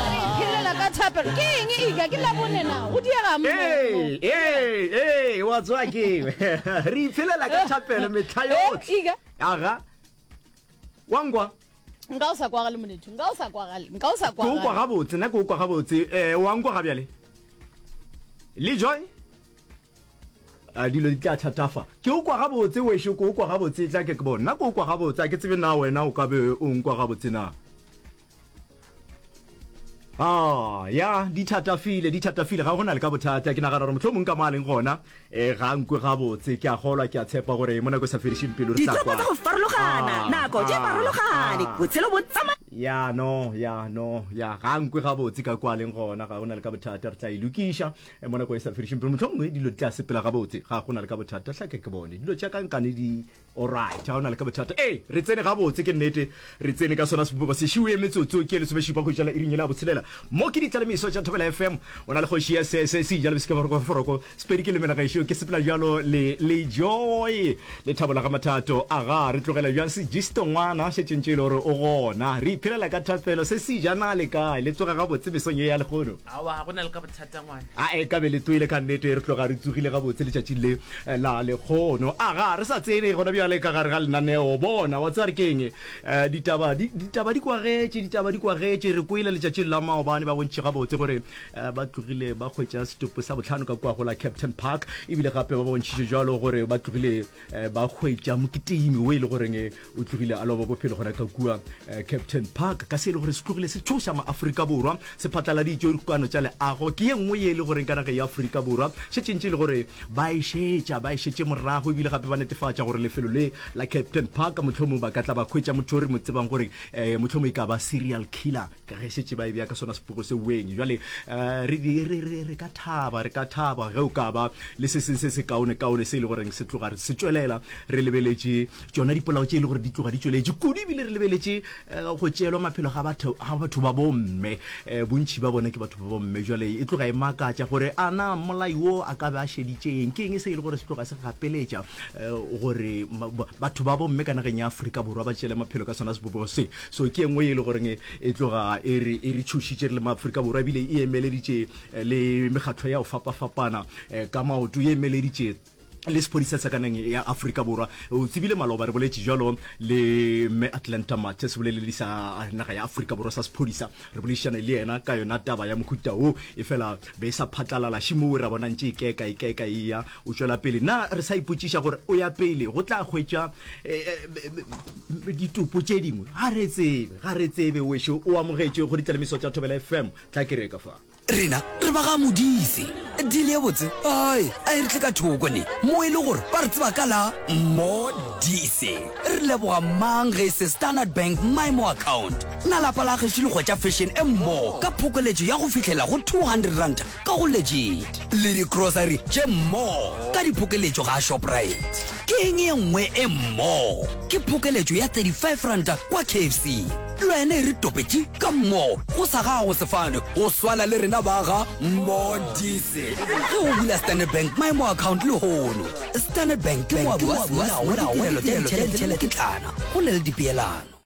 Re iphelela ka thapelo. Ke eng e ika ke labone na? Go diega mo. Ee, ee, ee, wa tswa ke re iphelela ka thapelo metlha eh, yotlhe. Ika. Aga. Wa ngwa. Nka o sa kwagale monethu. Nka o sa kwagale. Nka o sa kwagale. Ke o kwa gabotse, nna ke o kwa gabotse. Eh, wa ngwa ga bjale. Le joy? a dilo di tla thatafa ke o kwa gabotse wešo ke o kwa gabotse tla ke ke bona ke o kwa gabotse a ke tsebe na wena o ka be o nkwa gabotse na Ah, ya di thatafile di thatafile ga gona le ka bothata ke nagana gore motlho mongwe ka mo a leng gona um ga nkwe gabotse ke a golwa ke a tshepa gore mo nako e sa fedišeng pelo re tla kwa go farologana ah, nako di ah, farologane ah. botshelo bo tsama ya no ya no ya ga nkwe gabotse ka kwa leng gona ga gona le ka bothata re tla e lokiša eh, mo nako e sa fedišeng pelo motlho mongwe dilo di tla sepela gabotse ga gona le ka bothata tlhake ke bone dilo tša kankane di Alright, ha o na le ka bothata. Ee, re tsene gabotse, ke nnete. Re tsene ka sona seboba se šiwee metsotso ke lesomešupa go jala iring yela botshelela. Mo ke ditla le meso tša Thobela FM. O na le kgoši ya se, se, se ijalo besika foroko, foroko. Sepedi ke lemela gešo, ke sepela bjalo le, le joy. Lethabo la ga Mathato. Aga, re tlogela bjang Sigisto ngwana, šetšeng tšo e le gore o gona. Re iphelela ka thapelo, se se ijana le kae? Le tsoga gabotse mesong ye ya lehono? Aowa, ga go na le ka a e ka be le toile ka nnete re tloga re tsogile gabotse letšatšing le eh, la lekgono a ga re sa tsene gona bjale ka gare ga lenaneo bona wa tsare keng eh, ditaba di- ditaba di kwagetše ditaba di kwagetše re kwele letšatšing la maobane ba bontši gabotse gore eh, ba tlogile ba hwetša setopo sa botlhano ka kwa go la captain park ebile gape ba bontšhitše jalo gore ba tlogile eh, ba hwetša moketimi o e le goreng eh, o tlogile a loba bophelo go reka kua eh, captain park ka se e le gore se tlogile se tšhoša maaforika borwa se phatlaladitšwe dikokano tša leago ke ye nngwe ye e le goreng ka naga ya aforika borwa šetšentše e le gore ba e šetša ba e šetše morago ebile gape ba netefatša gore lefelo le la captain park mohlomong ba ka tla ba hwetša motho o re mo tsebang gore um mohlomong e ka ba serial killer ka ge šetše ba e bja ka sona sepogo se weng jale um re, re, re, re, re ka thaba re ka thaba ge o ka ba le se seng se se kaone kaone se e le goreng se tloga se tšwelela re lebeletše tšona dipolao tše e le gore di tloga di tšweletše kudu ebile re lebeletše um go tšeelwa maphelo ga batho ga batho ba bomme um bontšhi ba bona ke batho ba bomme jale e tloga e makatša gore a na mmolai wo a ka be a šeditšeng ke eng se e le gore se tloga se gapeletša um gore batho ba bomme ka nageng ya aforika borwa ba tšeele maphelo ka sona sebobogo se so ke engwe e le goreng e tloga e re e re tshošitše re le maaforika borwa ebile e emeleditše eh, le mekgatlo ya go fapafapana eh, ka maoto e emeleditše le sephodisa sa kaneng ya aforika borwa o tsebile maloba re boletše jalo le mme atlanta mate se boleledi sa naga ya aforika borwa sa sephodisa re boledišane le yena ka yona taba ya mohuta wo e fela be e sa phatlalala šimo o ra bonang tše ikeka ikeka e ya O tšwela pele. Na re sa ipotšiša gore o ya pele go tla hwetša eh, eh, ditopo tše dingwe? Ga re tsebe, ga re tsebe. Wešo o amogetše go ditlalemiso tša Thobela FM. Tla kereka fa. Rena re ba ga modise. Dile ye botse. Ai, a e re tle ka thoko ne. Mo e le gore ba re tseba ka la modise. Re leboga mang ge se Standard Bank Maimo account. Na lapa la gešo le hwetša fashion e mmogo ka phokoletšo ya go fihlela go 200 ranta ka go legit le di-grocery tše more ka diphokeletšo ga shoprite ke eng ye nngwe e more ke phokeletšo ya 35 ranta kwa kfc le wena e re topetše ka more go sa gago sefane go swana le rena ba ga more dise ge o bula standard bank my more account le hono standard bank ke moabi wa semolao wa ditirelo tša ditšhelete le dikitlana go na le dipeelano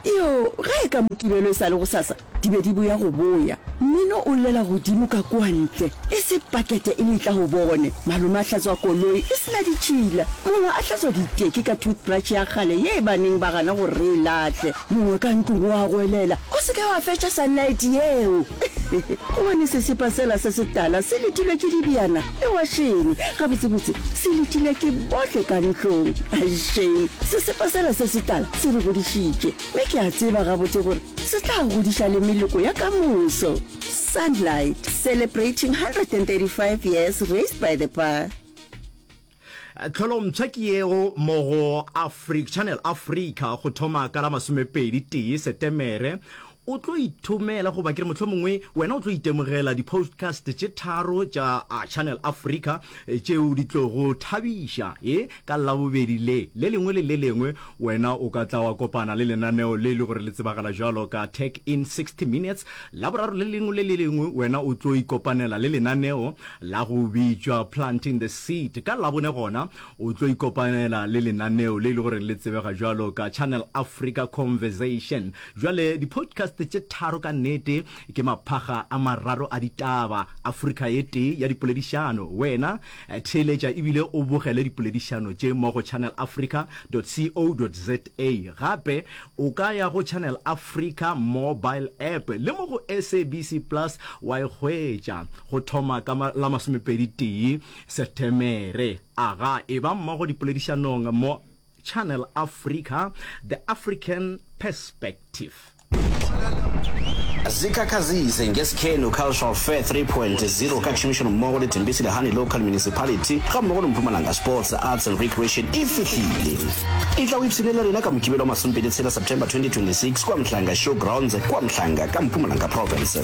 Iyo, ge e ka Mokibelo e sa le gosasa, di be di boya go boya. Mmino o llela godimo ka kua ntle. E se pakete e letla go bone. Malome a hlatswa koloi e sena ditšhila. Mongwe a hlatswa diteki ka toothbrush ya kgale ye e baneng ba gana gore re e lahle. Mongwe ka ntlong o a goelela, O se ke wa fetša sunlight yeo! Gobane sesepa sela se setala se letilwe ke dibjana Lewašene, gabotsebotse se letile ke bohle ka ntlong. Aisheng, sesepa sela se setala se re godišitše, mme ke a tseba gabotse gore se tla godiša le meloko ya ka moso. Sunlight, Celebrating 135 Years Raised by the Path. Tlholomphya ke yeo mo go Channel Africa go thoma ka la masomepedi tee Setemere O tlo ithomela goba ke re mohlomongwe wena o tlo itemogela di-postcast tše tharo tša Channel Africa tšeo di tlogo thabiša. E, ka Labobedi le, le lengwe le le lengwe, wena o ka tla wa kopana le lenaneo le e le gore le tsebagala bjalo ka Tech in 60 Minutes. Laboraro le lengwe le le lengwe wena o tlo ikopanela le lenaneo la go bitšwa Planting the Seed. Ka Labone gona o tlo ikopanela le lenaneo le e le gore le tsebega bjalo ka Channel Africa Conversation. Bjale, di-podcast tše tharo ka nnete ke maphaga a mararo a ditaba, Afrika ye tee ya dipoledišano. Wena theeletša e bile o bogele dipoledišano tše mo go channelafrica.co.za. Gape o ka ya go Channel Africa mobile app le mo go SABC Plus wa e hwetša go thoma ka la masomepedi tee Setemere. Aga, e ba mmogo dipoledišanong mo. Channel Africa, The African Perspective. zikhakhazise ngesikhenu Cultural Fair 3.0 ka tšhomišano mmogo le Tembesi Lehane Local Municipality ga mmogo le Mpumalanga Sports, Arts and Recreation e fihlile. E tla o ipshine le rena ka Mokibelo wa masompedi tshela September 2026 kwa Mhlanga Showgrounds kwa Mhlanga ka Mpumalanga Province.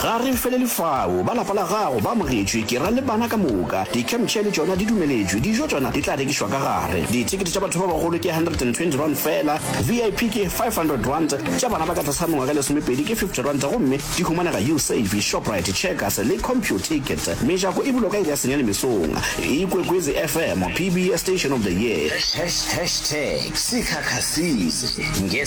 Ga re felele fao. Ba lapa la gago ba amogetšwe, ke ra le bana ka moka. Di-camp chair le tšona di dumeletšwe. Dijo tšona di tla rekišwa ka gare. Dithekete tša batho ba bagolo ke R120 feela, VIP ke R500, tša bana ba ka tlase ga mengwaga e lesomepedi ke R50 gomme di humanega Usave, Shoprite, Checkers le Computicket. Mejako e bulwa ka iri ya senyane mesong. Ikwekwezi FM, PBS Station of the Year. Hashtags, Sikhakhasizi, nge.